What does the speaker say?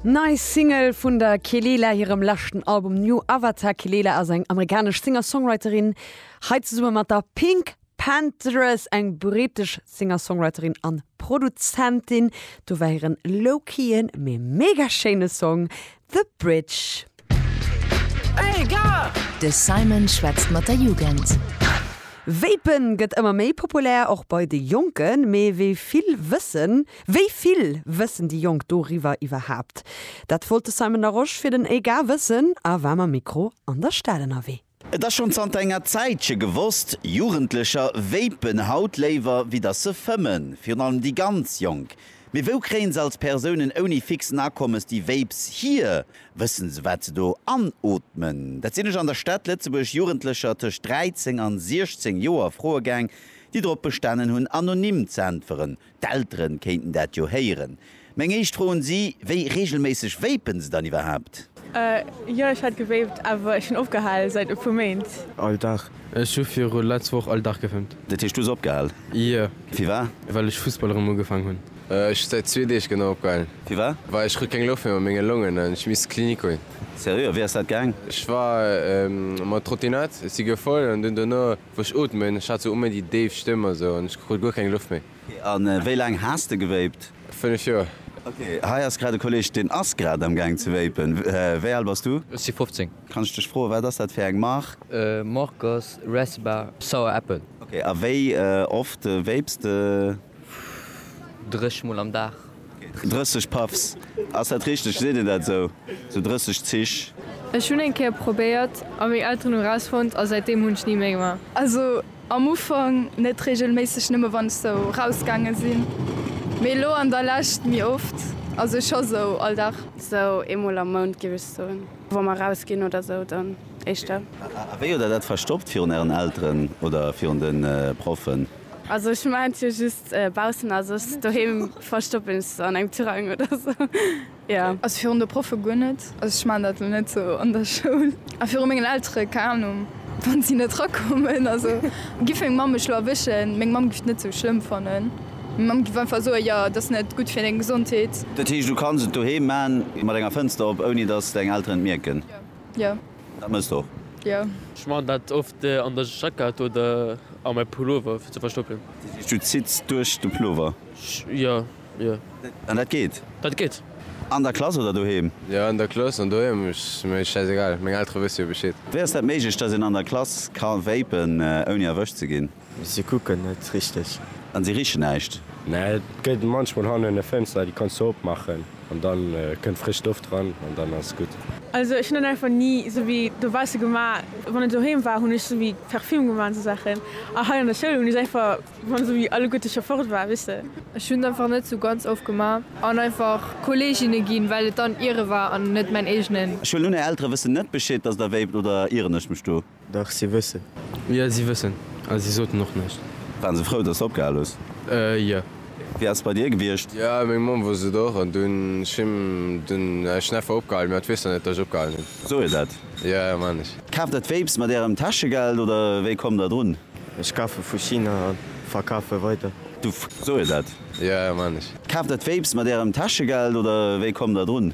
Nei Single vun der Kelela hirem leschten Album New Avatar. D'Kelela ass eng amerikanesch Singer-Songwriterin, hei zesumme mat der Pink Panthers, eng britesch Singer-Songwriterin an Produzentin. Do war hiren low-keyen, mee mega schéine Song The Bridge. Hey gars! De Simon schwätzt mat der Jugend. Vapen gëtt ëmmer méi populär, och bei de Jonken. Mee wéi vill wëssen, wéi vill wëssen déi Jonk doriwwer iwwerhaapt? Dat wollt de Simon Larosche fir den Hey gars wëssen a war mam Mikro an der Stad ënnerwee. Et ass schonn zanter enger Zäitche gewosst, Jugendlecher vapen haut léiwer wéi datt se fëmmen, virun allem déi ganz Jonk. Mee wou kréien se als Persounen ouni fixen Akommes déi Vapes hier? Wëssen se wat se do anootmen? Dat sinn ech an der Stad Lëtzebuerg Jugendlecher tëscht 13 an 16 Joer froe gaang, déi drop bestanen hunn anonym z'äntweren. D'Eltere kéinten dat jo héieren. Meng éischt Fro un si, Wéi reegelméisseg vapen se dann iwwerhaapt? A, Jo, ech hat gevapt, awer ech hunn opgehal säit e puer Méint. All Dag. Ech hu viru letz Woch all Dag gevapt. Dat heescht, du hues opgehal? Jo. Firwar? Well ech Fussball erëm ugefaangen hunn. Ech hu säit zwee Deeg genau opgehal. Firwar? Well ech krut keng Loft méi mat menge Longen an ech misst Klinik goen. Seriö? A wéi ass dat gaang? Ech war mat Trottinett, ech si gefoll an dunn dono Wou ech ootmen, ech hat sou uméi déi déif Stëmm a sou an ech krut guer keng Loft méi. A wéi laang has de gewéipt? 5 Joer. Ok, hei ass grad e Kolleg deen ass grad am gaang ze wéipen. Wéi al bass du? Ech si 15. Kann ech dech froen, wat ass dat fir eng Mark? Mark ass Resba Sour Apple. Ok, a wéi oft wéips de? Dréch mol am Dag. 30 Puffs, ass dat richteg? Seet een dat esou? Sou 30 Zich? Ech hunn eng Kéier probéiert a meng Elteren hu rausfonnt a säitdeem hunn ech ni méi gemaach. Also am Ufank net regelméisseg, nëmme wann ech sou rausgaange sinn, mee elo an der Lescht méi oft, also scho sou all Dag. Sou eemol am Mount géif ech soen, wa mer rausginn oder sou dann éischter. A wéi huet der dat verstoppt virun ären Elteren oder virun de Proffen? Also ech maan jo just baussen a soss doheem verstoppen ech se an engem Tirang oder sou jo. Also virun de Proffe guer net, also ech maan dat lo net sou an der Schoul, a viru mengen Eltere keng Ahnung wann si net rakommen, also giff meng Mamm mech lo erwëschen, meng Mamm giff et net sou schlëmm fannen, meng Mamm giff einfach soen jo et ass net gutt fir deng Gesondheet. Dat heescht du kanns et doheem maan mat enger Fënster op ouni dass deng Elteren et mierken? Jo. Dat mësst och. Jo. Ech maachen dat oft an der Jackett oder a mäi Pullover fir ze verstoppen. Dat heescht du zitts duerch de Pullover? Jo, jo. An dat geet? Dat geet. An der Klass oder doheem? Jo, an der Klass an doheem ass mir schäiss egal, meng Eltere wësse jo Bescheed. Wéi ass dat méiglech, datt een an der Klass ka vapen ouni erwëscht ze ginn? Se kucken net richteg. An se richen näischt. Mä et gëtt munchmol hannen e Fënster, déi kanns de opmaachen an dann kënnt frësch Loft dran an dann ass gutt. Also ech hunn dann einfach ni esou wéi dobausse gemaach. Wann et doheem war, hunn ech esou wéi Parfüm gemaach an esou Saachen. A hei an der Schoul hunn ech einfach, wann esou wéi alleguerte scho fort war, weess de. Ech hunn einfach net esou ganz oft gemaach an einfach Kolleeginne ginn, well et dann hire war an net mäin eegenen. Ech huelen un, är Eltere wëssen net Bescheed, dass der wéipt, oder ieren ech mech do? Dach, si wëssen. Jo, si wëssen. A si soten och näischt. Waren se frou, dass de opgehal hues? Jo. Wéi ass et bei dir gewiescht? Jo, meng Mamm wosst et och. An dunn hu dunn ech en effort opgehalen. Mä et weess der net, dass ech opgehalen hunn. Soe jo dat. Jo, maan ech. Kaaft der d'Vapes mat ärem Täschegeld oder wéi kommt der drun? Ech kafe vu China a verkafe weider. Du. Soe jo dat. Jo, maan ech. Kaaft der d'Vapes mat ärem Täschegeld oder wéi kommt der drun?